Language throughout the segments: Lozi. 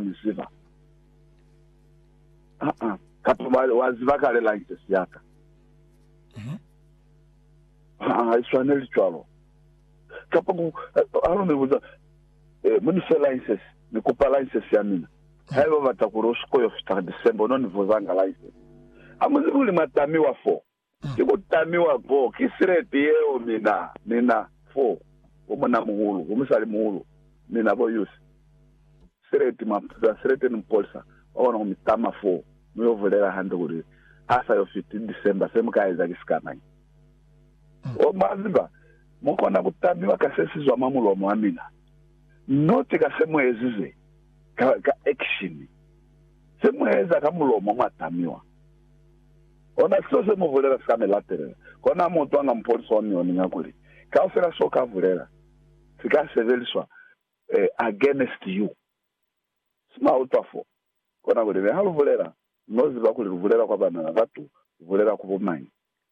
mi ziba. Aa, katu ba, wa ziba kale license ya ka. Mhm. Aa, i swaneli cwalo. Kapa ku, ha lu mi buza, eh, mu ni fe license, ni kupa license ya mina. Haiba u bata kuli u siko yo fita December, u no ni vuza nga license. Ha mu zibi kuli mwa tamiwa foo. Ki ku tamiwa ko, ki sileti yeo mina, mina fo, bo munamuhulu, bo musalimuhulu, mina bo Yusi. Sileti, mwa pita sileti ni mupolisa, mwa kona ku mi tama fo, mu yo bulela hande kuli, Ha sa yo fiti December, se mu ka eza ki sikamañi. Oh, mwa ziba, mu kona ku tamiwa ka se si zwa mwa mulomo wa mina, not ka se mu ezize ka, ka action. Se mu eza ka mulomo, mwa tamiwa. Ona seo se mu bulela sika mi latelela. Kona mo twa nga mupolisa wa mioni nga kuli, Kaufela so ka bulela, si ka sebeliswa against you. Si mwa utwa fo. Kona kuli, Mi ha lu bulela, no ziba kuli lu bulela kwa bana ba batu, lu bulela ku bomañi?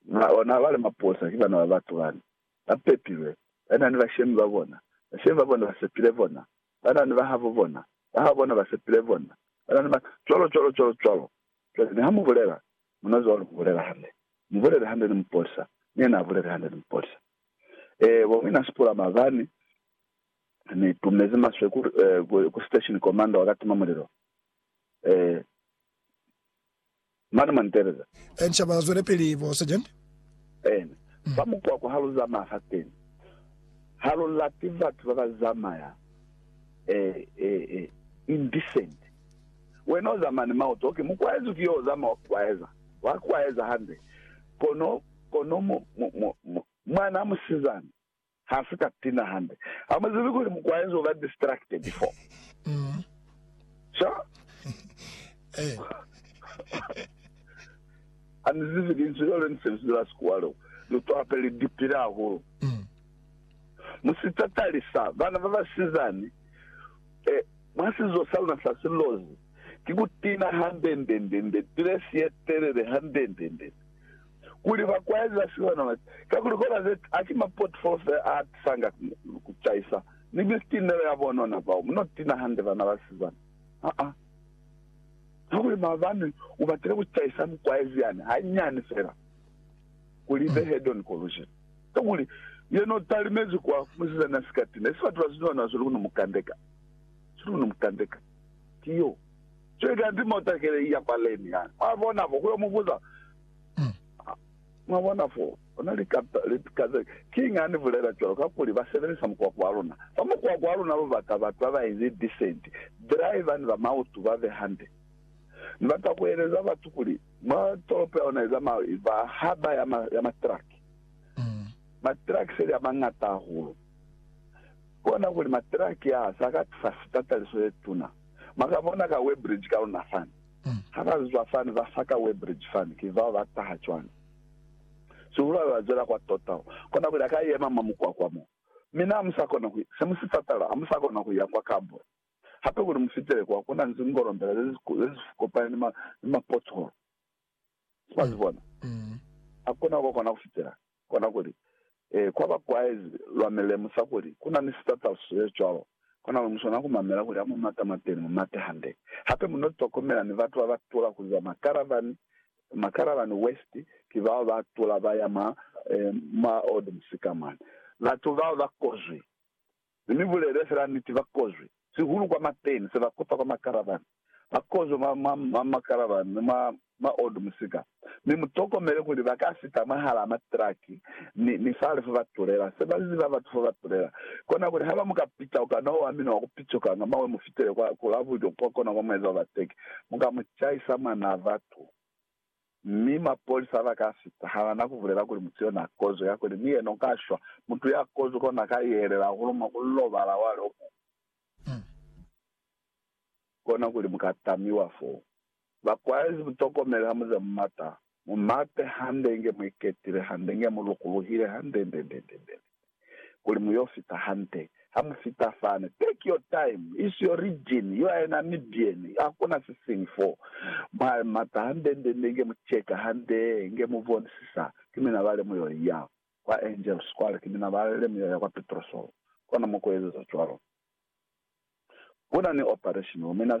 Mwa ona, bali mapolisa ki bana ba batu bani, ba pepilwe, ba na ni bashemi ba bona, bashemi ba bona ba sepile bona, ba na ni bahabo bona, bahabo bona ba sepile bona, ba na ni ba. Cwalo cwalo cwalo cwalo. Cwale niha mu bulela, muna zwalo mu bulela hande. Mu bulele hande ni mupolisa, ni yena a bulele hande ni mupolisa. Ee, bo mina sipula mabani, Ni tumezi maswe ku, ku, ku station commander wa katima mulilo. Ee. Mane mwa ni teeleza. Encia ba zwelepili, bo Sergeant. Eena. Fa mukwakwa ha lu zamaya fateni, ha lu lati batu ba ba zamaya, ee, ee, ee, indecent. Wena uza mane mauto, okay, mukwaezi ki yo uzama wa kukwaeza, wa kukwaeza hande, kono, kono mu, mu, mu, mu, mwana musizana ha si ka tina hande. Hamuzibi kuli mukwaezi uba distracted before. Sure? Anizibi linzwi leo le nise lizwi la Sikuwa leo, lu twape li dipile hahulu. Musitatalisa bana babasizani E, mwa sizo sa luna sa silozi, ki ku tina hande-nde-nde-nde, tilesi ye telele hande-nde-nde-nde, kuli ba kwaeza sihwana ba ki, kakuli kola ze ki, haki mapotfolo fela a tisanga ku caisa, ni bitinelo ya bonona bao muno tina hande bana ba sizana. Ha-a. Kakuli maabani u batile ku caisa mukwaezi yani, hanyani fela, kuli be hedoni ko lujili. Kakuli, yena u talimezi kwa musizana sikati ne si batela siñoho na sweli ku no mu kandeka. Sweli ku no mu kandeka. Ki yo. Cwale kanti motakele iya kwa Leni yani. Mwa bona fo, ku yo mu buza. Mwa bona fo, ona lika ze. Kiñi ha ni bulela cwalo? Kakuli, ba sebelisa mukwako wa luna. Fa mukwako wa luna lu bata batu ba ba inzi decent, driver ni ba mautu ba be hande. Ni bata ku eleza batu kuli, Mwa tolopo ya luna ye zamaiwi fa haba ya matraki, matraki seli a mañata hahulu. Ku kona kuli matraki aa sa ka tusa fita taliso ye tuna. Mwa ka bona ka Weybridge ka luna fani. Ha ba zwa fani ba fa ka Weybridge fani, ki bao ba taha cwani? Sihulu haeba ba zwela kwa Tota, u kona kuli a ka yema mwa mukwakwa mo. Mi na amu sa kona ku, se mu si patala, amu sa kona ku ya kwa Kabul. Hape kuli mu fitele kwa, ku na ni zingolombela ze si kopani ni mapotholo. Mwa si bona? Ha ku na kwa kona ku fitela. Kona kuli, Ee, kwa ba kwaezi, lwa mi lemusa kuli ku na ni sitataliso se cwalo. Kona kuli mu swanela ku mamela kuli ha mu mata mwateni, mu mate hande. Hape mu n'o tokomela ni batu ba ba tula ku za makaravani, makaravani west, ki bao ba tula ba ya mwa, mwa old musika mwani. Batu bao ba kozwi. Ni mi bulele fela niti, ba kozwi sihulu kwa mateni, se ba kopa kwa makaravani. Ba kozwi mwa, mwa, mwa makaravani ni mwa maodu musika. Mi mu tokomele kuli ba ka fita mwahalaa matraki ni, ni fale fo ba tulela. Se ba ziba batu fo ba tulela, kona kuli haba mu ka pita ku kana owa mina wa ku picukanga mawe mu fitele kwa, ku la bulyo kwa kona kwa mueza wa bateki, mu ka mu caisa mwanaa batu. Mi mapolisa ba ka sita halana ku bulela kuli mutu yo na kozwi kakuli ni yena u ka shwa. Mutu ya kozwi kona ka yeelela hahulu mwa ku lobala wa lo muñwi. Kona kuli mu ka tamiwa fo. Ba kwaezi mu tokomele ha mu za mu mata. Mu mate hande inge mu iketile hande, inge mu lukuluhile hande, ndendendendende. kuli mu yo fita hande. Ha mu fita fani, take your time, it's your region, you are a Namibian, hakuna sisiñi fo. Mwa mata hande nde nde nge mu cheka hande, nge mu bonisisa, ki mina bale mu yo ya kwa Angels kwale, ki mina bale mu yo ya kwa Petrosol, kona mwa ku ezeza cwalo. Kuna ni operation, mina.